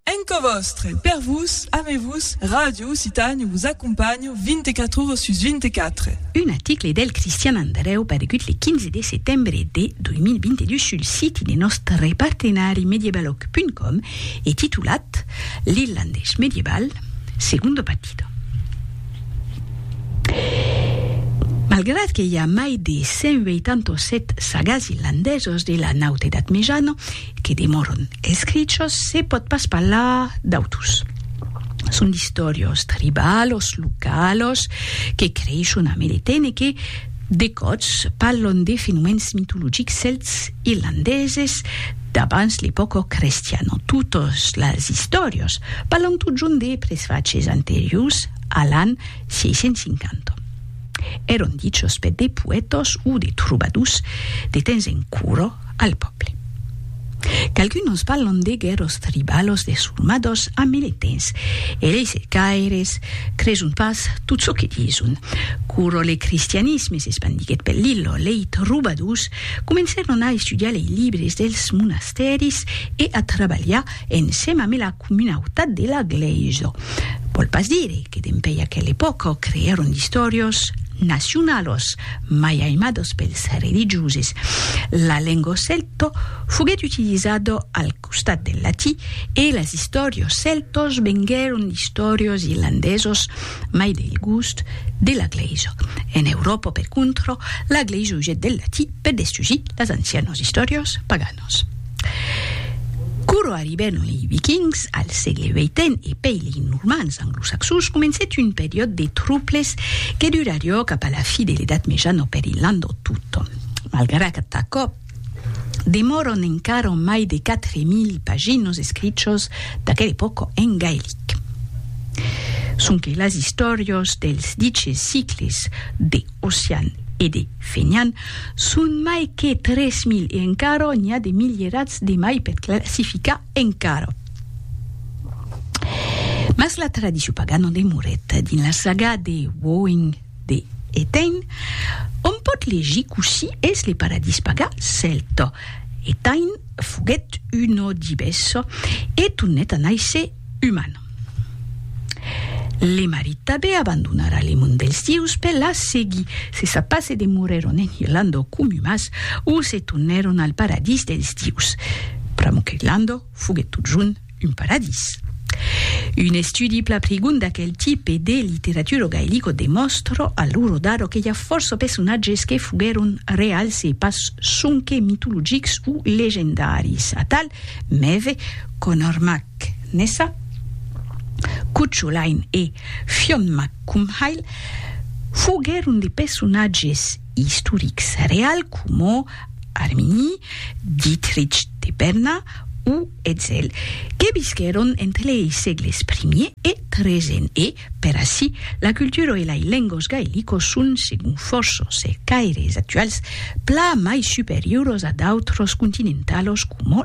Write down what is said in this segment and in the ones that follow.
Enco vòstre, per vos, ame vos, Ràdio Occitània vos acompanha 24 ora sus 24. Un aticle del Cristian Andrèu paregut le 15 de setembre de 2022 sul siti de nòstre partenari mediebaloc.com e titulat L'irlandés mediebal, segundo partido. Malgrat que i a mai de 187 sagas irlandesos de la Nauta Edat Mejana, que demòron escrichos se pòt pas parlar d'autus. Son d'istòrios tribalos, localos, que creishon a Meleten e que, de còts, parlon de fenomèns mitologics cèlts irlandeses d'abans l'epòca crestiana. Totes las istòrios parlon totjorn de presfachs anteriors a l'an 650. Èron dichos per de poètas o de trobadors de temps en cura. al pòble. Qualcuns parlan de guerros tribalos de surmadors a meletens e lei cercaires creson pas tot çò que dison. Quora le cristianisme s'espandiguèt pel Lillo, lei trobadors comencèron a estudiar lei libres dels monastèris e a trabalhar ensèm amé la comunautat de la glèisa. Vòl pas dire que dempèi aquela epòca creèron d'istòrios nacionalos mai aimados pels religioses. La lenga celta foguèt utilizada al costat del latí e las istòrios celtas venguèron d'istòrios irlandesos mai del gust de la glèisa. En Euròpa, per contra, la glèisa usèt del latí per destusir las ancianas istòrias paganas. Romanos. Quoro arribèron lei Vikings al sègle vii e pei lei Normans anglosaxons, comencèt un periòd de trouples que durarió cap a la fi de l'Edat Mejana per Irlandò tot. Malgrat aquò, demòron encara mai de 4.000 paginos escrichos d'aquela epòca en gaelic. Sonque las istòrios dels diches sicles de. Ossian e de Fenian son mai que 3.000 e encara n'i a de milierats de mai per classificar encara. Mas la tradicion pagana demorèt dins la saga de Woing de Etain, ont pòt legir cossí es le paradís paga cèlta. Etain foguèt un òdives e tornèt a nàisser Uman. Le marit tabé abandonara le mond dels dieus per la seguir se sa pas e demorèron en Irlanda o Comumas o se tornèron al paradís dels dieus, pr'amor qu'Irlanda foguèt totjorn un paradís. Un estudi pla prigon d'aquel tipe de literatura gaelica demòstra a l'ora d'ara que i a fòrça personatges que foguèron reals e pas sonque mitologics o legendaris, atal, mève, Conor Mac Nessa, Cucho Lain e Fionn Mac Cumhaill foguèron de personatges istorics reals coma Armini, Dietrich de Berna o Etzel, que visquèron entre lei sègles primier e tresen e, per aicí, la cultura e lei lengos gaelicos son, segon fòrça cercaires actuals, plan mai superioros a d'autres continentalos coma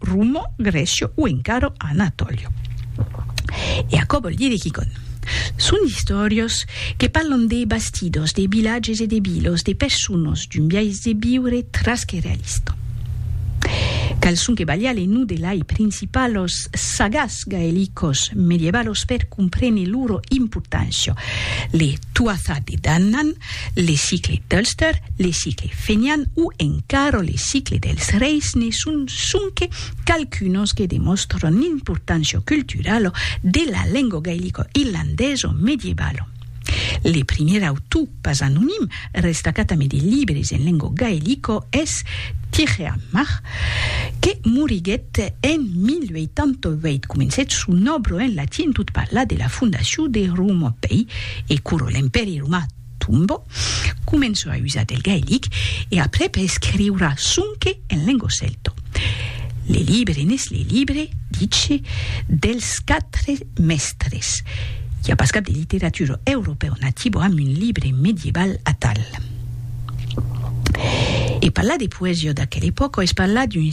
Romo, Grecio o encara Anatolio. E aquò vòl dire quicònh. Son d'istòrias que parlan de bastidors, de vilatges e de vilas, de personas, d'un biais de viure tras que realista. Quals son que valiá le nom de lai principalos sagats gaelicos medievalos per comprene loro importància, le Tuatha Dé Danann, Le sicle d'Ulster, le sicle fenian o encara le sicle dels reis ne son sonque qualqu'unos que demòstran l'importància culturala de la lenga gailica irlandesa medievalo. Le primièr autor pas anonim restacat amé de libres en lenga gailica es Tirheamach, que moriguèt en 1088. Comencèt son òbra en latin tot parlar de la fondacion de Roma pei E quoro l'Empèri Romà tombò, començò a usar del gaelic e après per escriura sonque en lengo celto. Le libre n'es le libre, dice, dels quatre mèstres. I a pas cap de literatura europèu nativo amb un libre medieval atal. E parlar de poesia d'aquela epòca es parlar d'un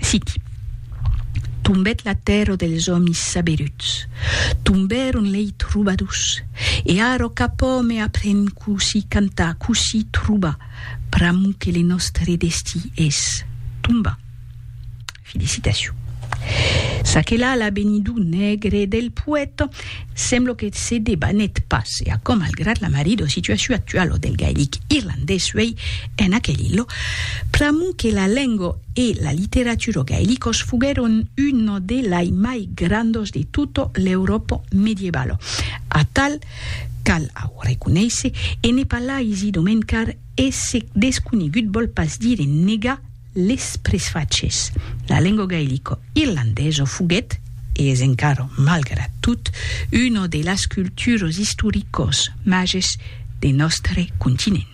Citi. Tombèt la tèrra dels òmis saberuts, tombèron lei trobadors, e ara cap òme apren cossí cantar, cossí trobar, pr'amor que le nòstre destí es tombar. Felicitacion. Ça que la la benidor negre del poèta. Semblo que se debanèt pas, e aquò malgrat la marida situacion actuala del gaelic irlandés uèi en aquel ilha, pr'amor que la lenga e la literatura gaelicas foguèron una de lai mai grandas de tota l'Euròpa medievala. Atal, cal au reconéisser, e ne parlaisi domen car esse desconegut vòl pas dire negar Les presfachés. La lengo gaelico irlandeso foguèt, e es encara malgrat tot, una de las culturos istoricos mages de nòstre continent.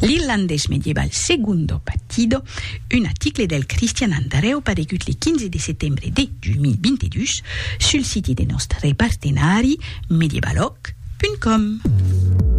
L'irlandés medieval Segundo Batido, un aticle del Cristian Andrèu paregut le 15 de setembre de 2022 sul siti de nòstre partenari medievalòg punt com.